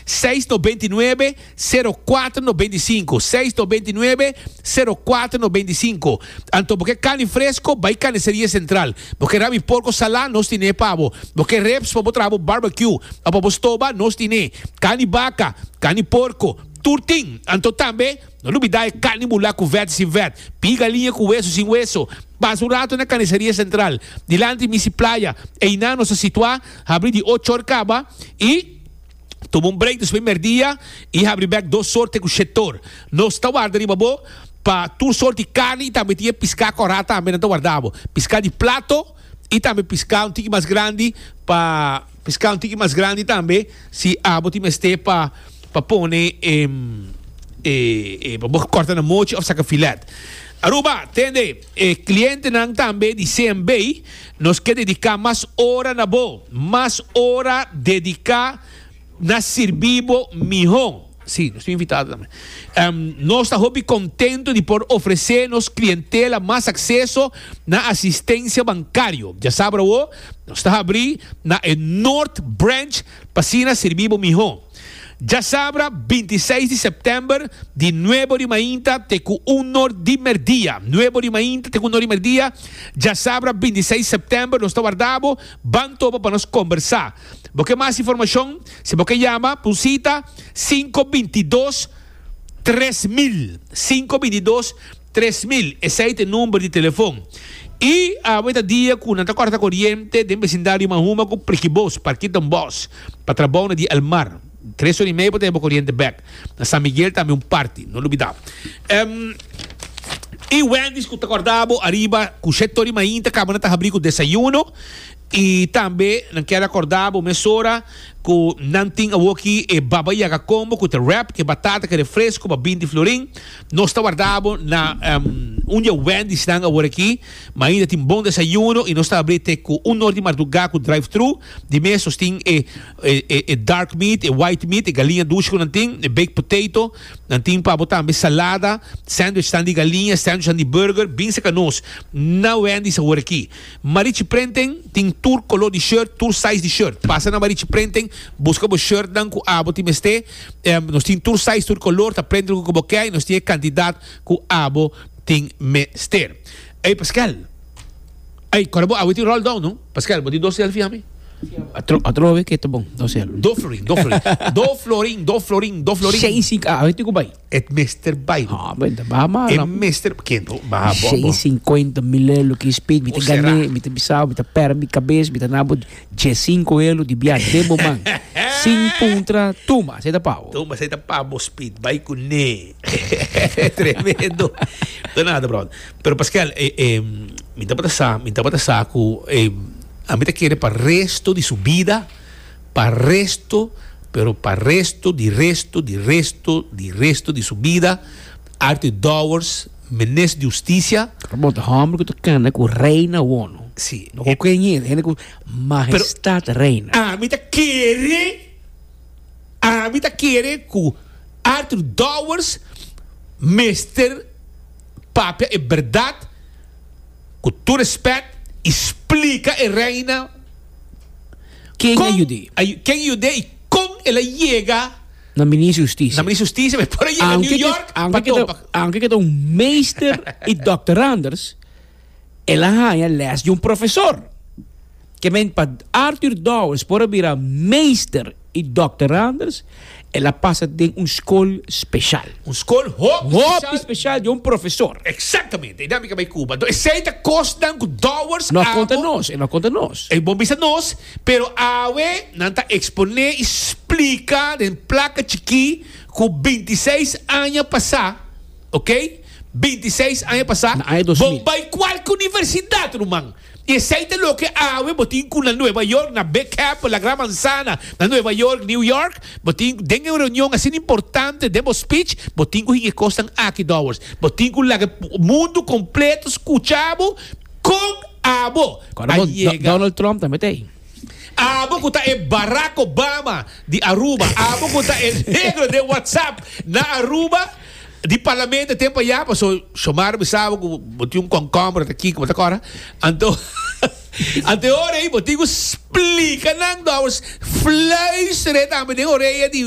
seis no beinti nuebe sero kuater no beinti sinku seis no beinti nuebe sero kuater no beinti sinku anto bo ke carni fresco bai carniceria central bo ke rabi porco sala nos tine pa bo bo ke reps pa bo traha bo barbecue o pa bo stoba nos tine carni baca carni porco tur tin anto tambe no lubida e carni bula cu vet y sin vet pie galiña cu hueso y sin hueso pasa un rato na carniceria central dilanti misi playa einan nos ta situa habri di ocho or caba y Tuma un break despues merdia y habri bek dos sorte cu shetor. Nos ta warda riba bo pa tur sort di carni y tambe tin e pisca corá tambe nan ta warda bo. Pisca di plato y tambe pisca un tiki mas grandi pa pisca un tiki mas grandi tambe si abo tin mester pa pa pone e e pa bo corta na mochi of saca filet. Aruba, tende. E clientenan tambe di CMB, Nos ke dediká mas ora na bo, mas ora dediká na sirbí bo mihó. Sí, nos ta invitado tambe. Nos ta hopi contento di por ofrecé nos clientela mas acceso na asistencia bancario. Dja sabra awor, nos ta habrí na e North Branch p'asina sirbí bo mihó. Djasabra binti seis di sèptèmber di nuebo di mainta te ku un nor di mèrdia. Nuebo di mainta te ku un nor di mèrdia, djasabra binti seis di sèptèmber. Nos ta warda bo. Ban topa pa nos kombersá. Bo ke mas informashon? Si bo ke yama pa un sita, sinku binti dos tres mil, sinku binti dos. Tres mil, esei ta e number di telefon. Y awe ta dia cu nan ta corta coriente den becindario Mahuma cu Prikibos, Parkit Don Bos, pa trabao na di El Mar. Tres ora y medio pa ta heba coriente bek. Na San Miguel tambe un parti, no lubida. Em, y Wendy's cu ta corda abo ariba cu shet ora y mainta caba nan ta habri cu desayuno. Y tambe nan kier a corda abo mesora cu nan tin awoki e Baba Yaga Combo cu ta wrap cu e batata cu e refresco pa bin di Florin. Nos ta warda bo na un dje Wendysnan aworakí, ma ainda tin bon desayuno i nos ta abrí te ku un nor di mardugá ku drive-thru. Di mes nos tin e e dark meat, e white meat, e galiña dushi ku nan tin, e baked potato. Nan tin pa bo tambe salada, sandwichnan di galiña, sandwichnan di burger. Bin saka nos na Wendys aworakí. Marichi Prenten tin tur koló di shirt, tur size di shirt. Pasa na Marichi Prenten, buska bo shirtnan ku abo tin mester. Em, nos tin tur size, tur color, ta prende loke cu bo kei, nos tin e cantidad cu abo tin mester. Ey Pascual, ey cora bo awe tin roll down no? Pascual, bo tin dos selfie ami? Atro, atrobe ke ta bon, dos selfie. Do florin, do florin, do florin, do florin, do florin. Shane Sink, awe tin cu bay? Et mester bai. No, ah, ben, baha maar. E mester, ken to, baha bo. Shei cincuenta mil euro ki speed, mi te gane, mi te bisao, mi te per mi cabes, mi te nabo je cinco euro di bia de moman. Sin puntra, tuma, sei ta pao. Tuma, sei ta pao, speed, bai ku ne. Tremendo. To nada, bro. Pero Pascal, eh, eh, mi te bata sa, mi te bata sa ku, eh, a mi te kere pa resto di su vida, pa resto, pero pa resto di resto di resto di resto di su bida, Arthur Dowers, Minister di Husticia. Ta bota homber cu ta canta cu rey na wono. Si. No con cu e ñe'e, hende cu majestad reina. Ami ta kere, ami ta kere cu Arthur Dowers mester papia e berdad, cu tur respect, y splica e reina. Ken a yud'é? Ken a yud'é i kon el a yega na Minister Hustisia? Na Minister Hustisia, mi por a yega New York pa topa. Aunke ke ta un meester i dokteranders, el a haña lès di un profesor. Ke meen, pa Arthur Dowers por a bira meester i dokteranders, El a pasa den un skol speshal. Un skol hopi speshal. Hopi speshal di un profesor. Eksaktamente. I dame ke bai Kuba. Enton esei ta kosnan ku dòwers abo. Lo a konta nos. E lo a konta nos. E bon bisa nos. Pero awe nan ta eksponé i splika den plaka chikí ku binti i seis aña pasá, oke, binti i seis aña pasá, Na aña dos mil. bo bai kualke universidat, ruman. I esei ta loke awe bo tin ku na Nueva York, na Big Apple, La Gran Manzana, na Nueva York, New York, bo tin ku den e un reunion asina importante den bo speech bo tin ku hin e kosnan aki dòwers. Bo tin ku laga mundu kompleto skucha bo kon abo a yega. Donald Trump tambe ta ei. Abo ku ta e Barack Obama di Aruba, abo ku ta e negro den WhatsApp na Aruba, Di parlamento e tempo ya paso Xiomara bisaba cu bo tin un concombre ata aki cu bo ta cora anto anto e ora ey bo tin cu splica nan dor fluisteren tambe den orea di